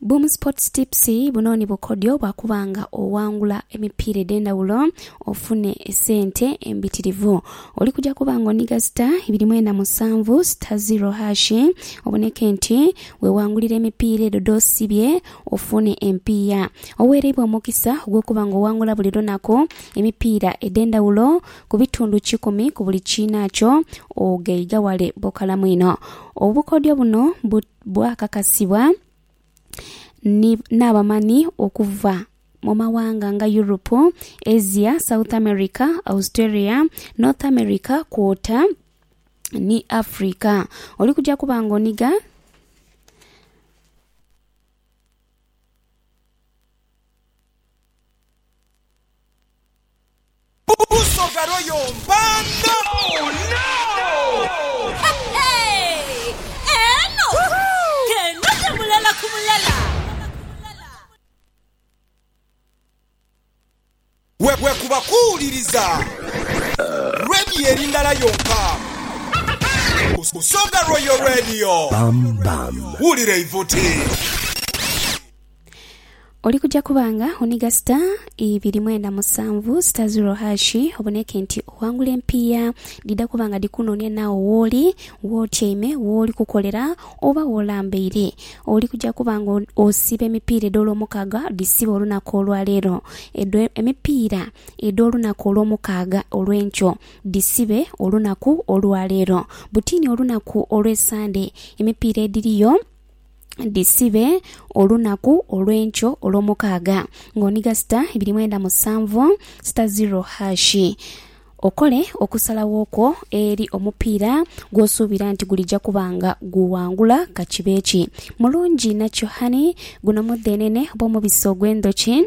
Boom Sports Tips buno ni bukodyo bwa kuba nga owangula emipiira edh'endhawulo ofune esente embitirivu. Oli kuja kuba nga oniga sita ibiri mwenda musanvu sita ziro hashi oboneke nti wewangulira emipiira edho dh'osibye ofune empiiya. Oweereibwa omukisa ogw'okuba nga owangula buli lunaku emipiira edh'endhawulo Ku bitundu kikumi ku buli kiinakyo ogheiga ghale bukalamu inho. Obukodyo buno bu, bwakakasibwa ni, n'abamanhi okuva mu maghanga nga Yuropu, Asia, South America, Australia, North America kwota ni Africa. Oli kuja kuba ng'onhiga. Busoga Royal Mpanda-Bwekuba kuwuliriza Radio eri ndala yonka, Busoga Royal Radio. Wulira eivuti. Oli kuja kuba nga oniga sita ibiri mwenda musanvu, sita ziro hashi, oboneke nti oghangula empiiya. Dhidha kuba nga dhikunoonia naagho wooli, w'otyaime, wooli kukolera, oba w'olambaire. Oli kuja kuba nga osiba emipiira edh'Olwomukaaga, dhisibe olunaku olwa leero. Edho emipiira edh'olunaku Olwomukaaga olw'enkyo, dhisibe olunaku olwa leero. Butiini olunaku olw'Esande, emipiira edhiriyo. dhisibe olunaku olw'enkyo olw'omukaaga, ng'onigha sita ibiri mwenda musanvu, sita ziro haashi. Okole okusalagho kwo eri omupiira gw'osuubira nti gulija kuba nga guwangula ka kibe ki. Mulungi nakyo hani? Guno mudheenene oba omubisi ogw'endhoki?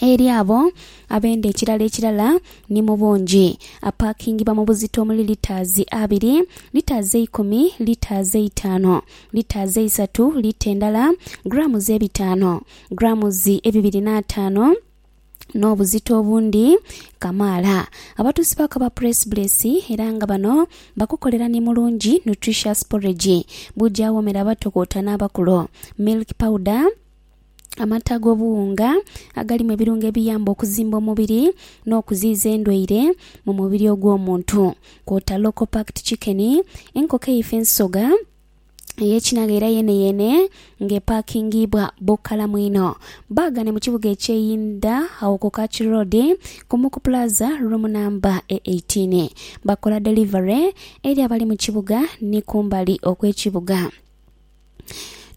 eri abo abenda ekirala ekirala ni mu bungi. Apaakingibwa mu buzito omuli litaazi abiri, litaazi eikumi, litaazi eitaano, litaazi eisatu, lita endala, grammes ebitaano, grammes ebibiri n'ataano, n'obuzito obundi kamaala. Abatuusi ba Kaba Press Bless era nga bano bakukolera ni Mulungi Nutritious Porridge, bujawoomera abato kwota n'abakulu, Milk Powder, Amata ag'obuwunga agalimu ebirungo ebiyamba okuzimba omubiri n'okuziiza endwaire mu mubiri ogw'omuntu kwota Local Packed Chicken, enkoko eife ensoga ey'ekinagha era yeeneyeene nga epakingiibwa bukalamu inho. Baagane mu kibuga eky'e Inda agho ku Kach Road, Kumuku Plaza, roomu namba e eighteen. Bakola delivery eri abali mu kibuga ni kumbali okw'ekibuga.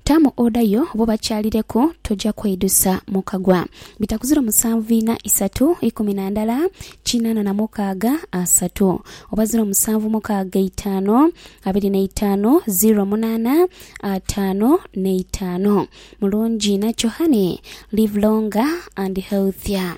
Tamu oda yo bo bakyalireku toja kweidusa mu kagwa. Bitakuziro musanvu ina isatu ikumi na ndala kinana na mukaaga asatu oba ziro musanvu mukaaga eitaanu abiri na itaanu ziro munana ataanu na itaanu Mulungi inakyo honey live longer and healthier.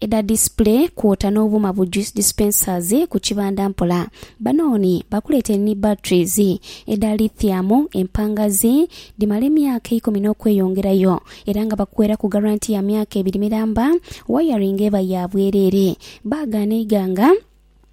edha display kwota n'obuuma bu juice dispensers ku kibanda mpola. Banooni bakuleetere ni batteries edha lithium empangazi dhimala emyaka eikumi n'okweyongerayo era nga bakuweraku garanti ya myaka ebiri miramba. Wayaringa eba ya bwereere. Baagha n'eighanga.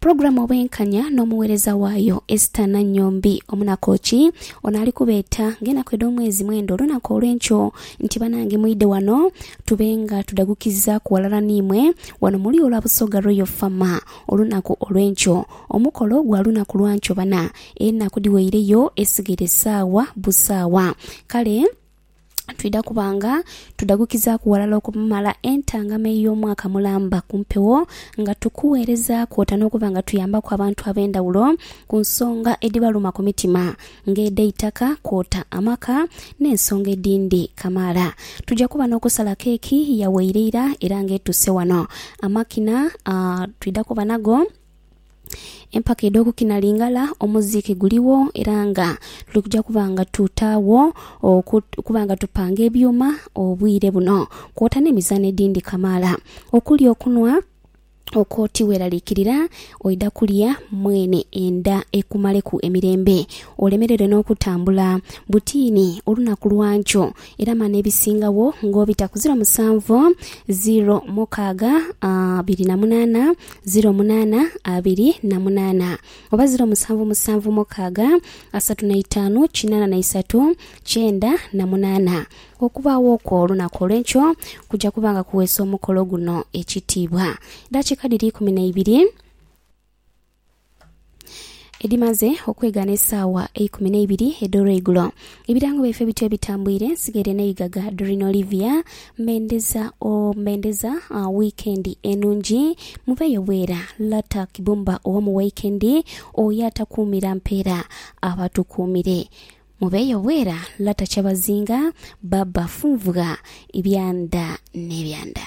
Pulogulamu Obwenkanya n'omuweereza waayo Esther Nannyombi Omunakooki. Ono ali kubeeta ng'enaku edh'omwezi mwenda olunaku olw'enkyo nti banange mwidhe wano tube nga tudhagukizaaku ghalala n'imwe wano mu lulyo lwa Busoga Royal Fama olunaku olw'enkyo. Omukolo gwa lunaku lwa nkyo bana, enaku dhiweireyo esigaire saawa busaawa kale. twidha kuba nga tudhagukizaaku ghalala okumumala entangama ey'omwaka mulamba ku mpewo nga tukuweereza kwota n'okuba nga tuyambaku abantu ab'endhawulo ku nsonga edhibaluma ku mitima ng'edh'eitaka kwota amaka n'ensonga edhindi kamaala. Twidha kuba n'okusala keeki yawaire eira era ng'etuuse wano. Amakina twidha kuba nago. Empaka edh'okukina Lingala omuziiki guligho era nga tuli kuja kuba nga tutaagho oku- okuba nga tupanga ebyuma obwire buno, kwota n'emizaano edhindhi kamaala. Okulya okunhwa okwo tiweraliikirira, oidha kulya mwene endha ekumaleku emirembe, olemererwe n'okutambula. Butiini olunaku lwankyo. Era mane ebisingagho ng'obita ku ziro musanvu, ziro mukaaga, abiri na munaana, ziro munaana, abiri na munaana, oba ziro musanvu musanvu mukaaga, asatu na itaanu, kinaana na isatu, kyenda na munaana. Okubaagho okwo olunaku olw'enkyo kuja kuba nga kuweesa omukolo guno ekitiibwa. Dakiika dhiri ikumi na ibiri. Edhimaze okwega n'esaawa eikumi n'eibiri edh'olweigulo, ebirango byaife bityo bitambwire nsigaire n'eigaga Doreen Olivia Mendeza or Mendeza uh, wiikendi enungi muveeyo bwera Lata Kibumba owa mu waikendi oyo atakuumira mpeera aba atukuumire muveeyo bwera Lata Kyabazinga Baba Funvugha Ebyanda n'ebyanda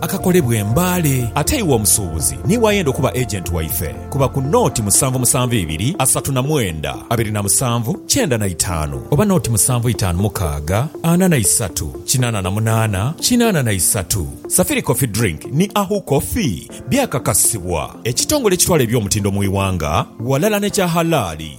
akakolebwa e Mbale. Ate iwe omusuubuzi niiwe ayenda okuba agent waife, kuba ku nooti musanvu musanvu ibiri asatu na mwenda abiri na musanvu kyenda na itaanu oba nooti musanvu itaanu mukaaga ana na isatu kinaana na munaana kinaana na isatu. Safiri Coffee Drink ni Ahu Coffee byakakasibwa ekitongole ekitwala eby'omutindo mu iwanga ghalala n'ekya halaali.